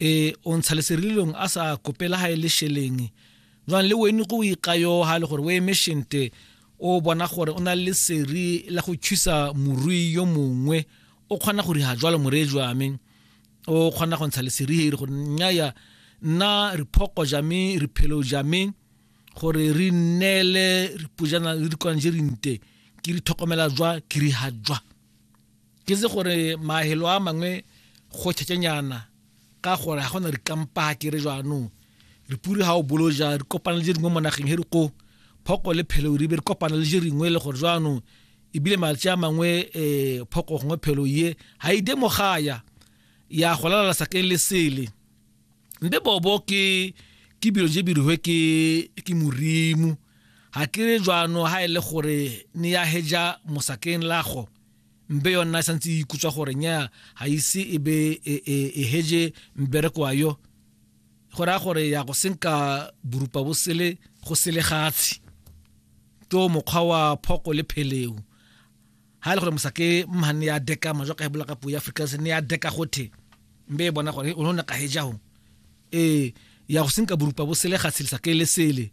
e o ntsha leserililong a sa kopela ga e le sheleng jwang le wene go ikayo ga le gore o eme shente o bona gore o na le seri la go thusa morui yo mongwe o kgona go riga jwalo moree jwame o kgona go ntsha leseri gore nyaya nna re phoko jame re phelo jame gore re nnele re pujana le dikwanjerinte ke di tlhokomela jwa ke riha jwa ke se gore mahelo a mangwe go tšhetšenyana ka gore ga gona rikampa ke re jaanong re puri ga o bolo ja re kopana le je dingwe mo nageng he re ko phoko le phelo re be re kopana le je ringwe le gore jaanong ebile malwetse a mangwe um phoko gongwe phelo ye ga e de mogaya ya go lalala sakeng le sele mbe bobo ke ke bilo je birihwe ke ke morimo ga ke re jaanong ga e le gore ne ya heja mosakeng lago mbe yona e santse e ikutswa gore nya ga ise e be e, e, e hege mbereko wa yo go raya gore ya go senka borupa bo sele go sele gatshe to mokgwa wa phoko le pheleo ha e le gore mosake mhane ya deka majwa ka e bula ka puo ya afrika se ne ya deka gothe mbe e bona gore o ne ka heja ho ee ya go senka borupa bo sele gatshe le sake le sele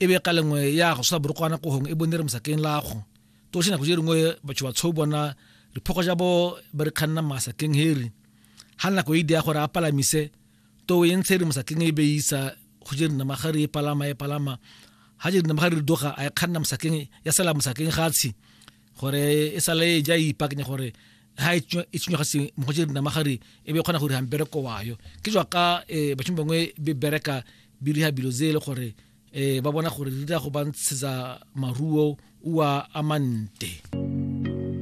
e be ka lengwe ya go sola borokwana kohong e bone re mosakeng lago toše nako je dingwe batho ba tshou bona diphoko ja bo ba re kganna masakeng heri ha nako e dia gore a palamise to e ntshe re mosakeng e beisa go je rena magare e palama e palama ha je rena magare re doga a e kganna mosakeng ya sala mosakeng gatshi gore e sale e ja ipaakanya gore ha e tshwenywa ga se mo go dina magare e be kgona gore hambe re ko wayo ke jwa ka eh, batho bangwe be bereka bi riha bilo zele gore eh, ba bona gore re dira go ba ntshetsa maruo ua amante